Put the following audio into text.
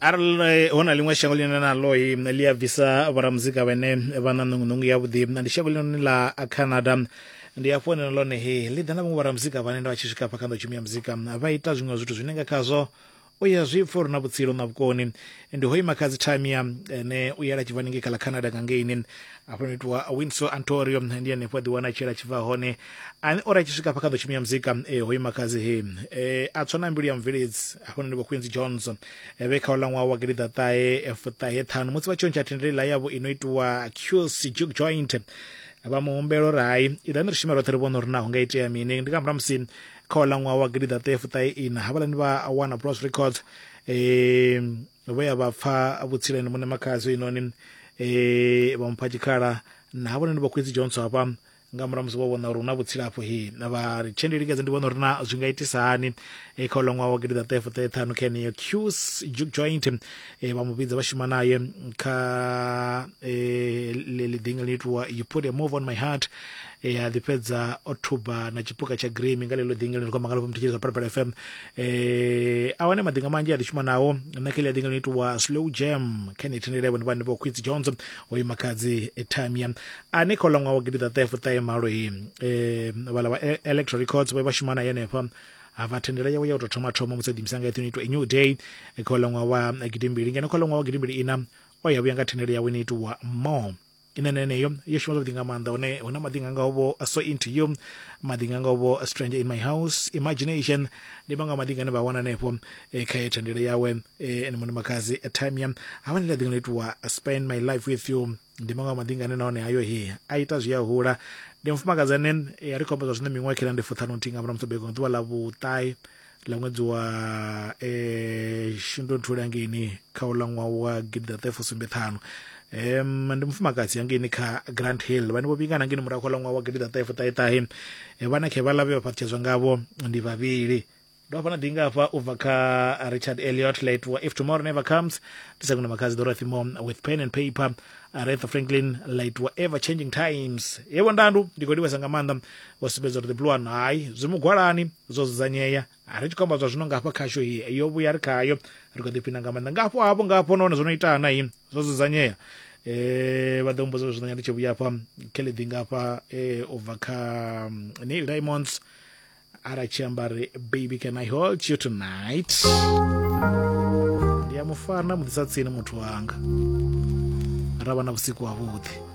arali hu na ḽiṅwe shango ḽine na loi ḽi a bvisa vhoramuzika vhene vha na ṋungunungu yavhuḓi ndi shango ḽinoni ḽa canada ndi hafho hone lone he ḽi ḓa na vhaṅwe vhoramuzika vhane nda vha tshi swika hafha kha nḓowtshumi ya muzika vha ita zwiṅwe zwithu zwine nga khazwo u ya zwi pfa uri na vhutsilu na vhukoni ndi ho ima kha dzi tamia ene u yela tshivhani ngei kha ḽa canada nga ngeini afho no itiwa winso antorio ndi henefho a ḓiwana a tshela tshi bva hone ane ori a tshi swika hafha kha ḓo tshimia muzika e hoyu makhazi he e a tswa na mbilu ya mveledzi hafho ndi vho queens jones e vhe kha ola ṅwaha wa gidi ḓaṱahe fuṱahe ṱhanu musi vha tshi ontsha thendele ḽa yavho ino itiwa qs juke joint vha mu humbela uri hai iḓani ri shume roṱhe ri vhone uri naho nga itea mini ndi nga murahu musi kha ola ṅwaha wa gidi ḓaṱahe fuṱahe ina havhaḽani vha wana bros records um no vhuya vha pfa vhutshileni muṋe makhadzo inoni um eh, vha mupha tshikhala na havhone ni vhakhwedzi johnso hafha nga murahu musi vho vhona uri hu na vhutsila hafho he na vha ri tshe ndi lingedza ndi vhona uri na zwi nga itisa hani e kha uḽa ṅwaha wa gidida ṱahe fuṱahe ṱhanu kha yeneyo qs juke joint e vha mu vhidza vha shuma naye kha e, ḽiḓinga ḽi itiwa you put a move on my heart e a ḓi fhedza o thuba na tshipuka tsha grimi nga ḽeḽo ḓingeloni kwa mangalofha muthu tshilisa phalaphala fm e a wane madinga manzhi a ḓi shuma nao nṋe kha ḽi a dinga ḽi itiwa slow jam kha ni thendele vhone vhane vho quits jones o ima khadzi etamia a ni kha ḽa ṅwaha wa gidi ḓaṱahe fuṱahe malo he um vhala vha e-, electro records vho vha shuma na yenefha hava thendela yawe ya u tou thoma thoma musi a ḓimisa nga eṱhoni itwa a new day kha ḽa ṅwaha wa gidimbili ngeno kha ḽa ṅwaha wa gidimbili ina o ya vhuya nga thendelo yawe ni itiwa more ine na yeneyo yo shuma zwavhuḓi nga maanḓa hone hu na maḓi nga ngaho vho so into you maḓi nga ngaho vho stranger in my house imagination ndi maṅwe a maḓi ngane vha wana hanefho eh, kha ye thandele yawe eh, ene muṋe makhadzi eh, tamia havha ndi laḓi nga itiwa spend my life with you ndi maṅwe a maḓi ngane nahone hayo he a ita zwi a hula ndi mufumakadzi ane eh, a ri khomba zwa zwino miṅwaha khela ndi fuṱhanu nthihi nga murahu musi bego nga ḓuvha ḽa vhuṱae ḽa ṅwedzi wa eh shundunthule hangeini kha uḽa ṅwaha wa gidiḓaṱahefusumbethanu um ndi mufumakadzi hangeini kha grand hill vhane vho vhingana hangeini murahu kha uḽa ṅwaha wa gidiḓaṱahefuṱaheṱahe eh, vhana khe vhaḽa vhe vha fhaṱutshedzwa ngavho ndi vhavhili ndo hafha na dinga hafha u bva kha richard eliot late wa if tomorrow never comes ndi sa kuno makhadzi dorothy mom with pen and paper aretha franklin late wa ever changing times yebo ndandu ndi khou livhesa nga maanḓa vho sumbedza uri ḓipilo wanu hai zwi mugwalani zwo dzudzanyea a ri tshi khou amba zwa zwino nga hafha khashu hi yo vhuya ri khayo ri kho ḓiphina nga maanḓa ngafho hafho ngafho nahone zwo no ita na hi zwo dzudzanyea eh vha ḓo mmbudza zwi ṋanya ndi tshi vhuya afha kheḽeḓi nga afha eh u bva kha mm, neil diamonds ara tshi amba ri baby can i hold you tonight ndi ya mufana muḓisa tsini muthu wanga ra vha na vhusiku havhuḓi